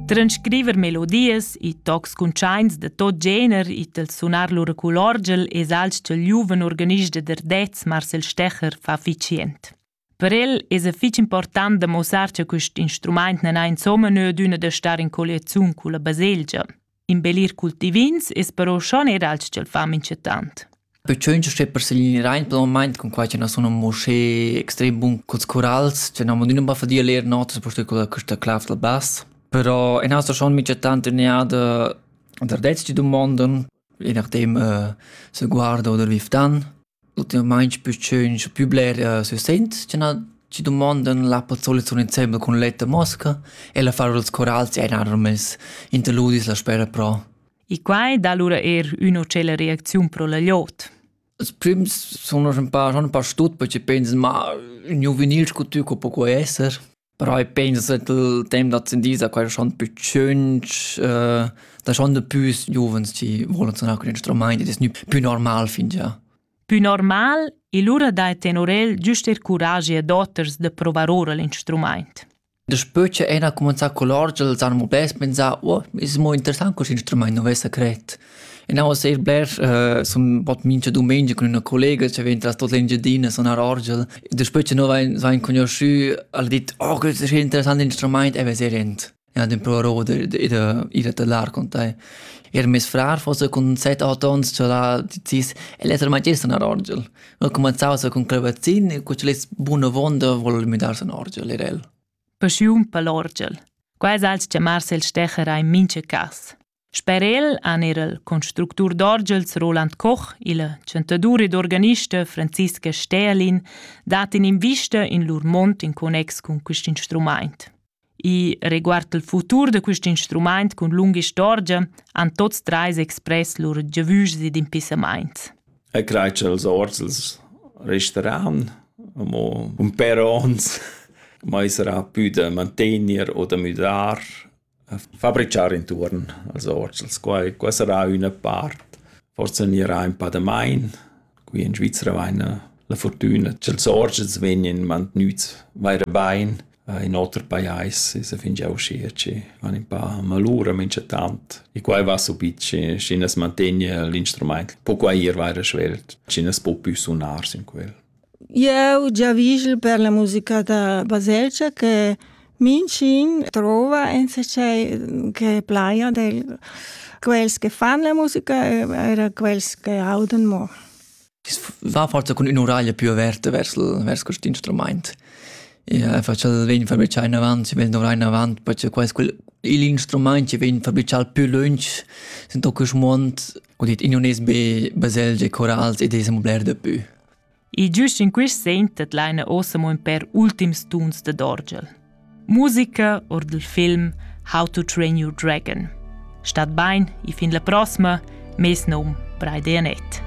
Transcriver melodias e tocs cuntschaints da tot gener it el sunar lur cul orgel es alch ch'el giuven organist da Derdez Marcel Stecher fa ficient. Per el es fich important da mossar cha quist instrumaint nan ha insomma nö d'üna da star in colliaziun culla baselgia. Imbellir cultivins es però schon er alch ch'el fa minchatant. Perciò c'è per segnare rein per il moment con qua che non sono mosce extrem bun col corals, che non modino ba fadia ler notas posto con questa clav del bass. Però in asta schon minchatant teniada der letzte domonden, je nachdem uh, se guarda oder wie dan. Ultimamaing püchön scu pü bler sü Sent cha na chi dumondan l'appel solita insembel cun l'etta mosca e l'affar dals corals eir nar mez interludis la spera pro. E quai dà lura eir ün'otschella reacziun pro la gliot. Als prims sun ün pa, sun ün pa stut perché pensan, ma ün juvenil scu tü co poco esser. Però i pensa ch'el temp da ascendida quai schon pü tschünch, da schon da püs giuvens chi volan suonar cun instrumaint ed es gnü pü normal fingià. Pü normal e lura dai tenor el güst eir curagi ad oters da provar oura l'instrumaint. Daspö cha Ena ha cumanzà cul orgel s'hana mo bels pensà «Oh, es mo interessant cust instrumaint, nu vessa cret». Enavos eir blers uh, sun bod mincha dumengia cun üna collega cha vain tras tot l'Engiadina sun a Rorgel. Daspö cha no vain, vain cugnuschü, al dit «Oh, quest es interessant instrumaint» e vesa rent. Ja, den provarò d'ir da lar con tai. Er mes frar fosse cun set aut ons cha l'ha decis el esser magister a Rorgel. Ho cumanzau sa cun clavazzin e cu c'el es buna vonda vol müdarse a Rorgel, er el. Paschiun per l'Orgel. Quai es als chiamars il stecher a in mincha cas. Sper el han er il constructur d'orgels Roland Koch, il chantadur ed organista Franziska Stählin dat in'invista in lur mond in connex cun quest instrumaint. I riguard il futur da quest instrumaint cun lunga istorgia han tots treis express lur giavüschs ed impissamaints. E crai ch'els orgels resteran amo un per ons, mai sarà pü da mantegner o da müdar Fabrichar intuorn als orts, als quai qua sarà üna part. Forsa gnirà ün pa damain. Qui in Svizra vaina la furtüna cha'ls orts vegnan mantgnüts vaira bain. In oter pajais esa fingià uschia chi han ün pa malura minchatant e quai va subit schi schi as mantegna l'instrumaint po quai ir vaira svelt, schi as po pü sunar sün quel. Eu giavüschel per la musica da baselgia che minchün trova insachet che plaja del quels che fan la musica e eir quels che audan mo. I's va forsa cun ün'uraglia più averta vers vers quist instrumaint. Ja, facel vegn fabrichà inavant, si vegn dovrà inavant, perché quels quel il instrumaint che vegn fabrichà più lunch sind doch quist muond, ho dit in unes be baselgie, chorals ed es amo bler da pü. E giust in quist segn tedlaina ossa mo ün pêr ultims tuns dad orgel. Musica or dal film How to Train Your Dragon. Stat bain e fin la prossima, mes nom Braide Anett.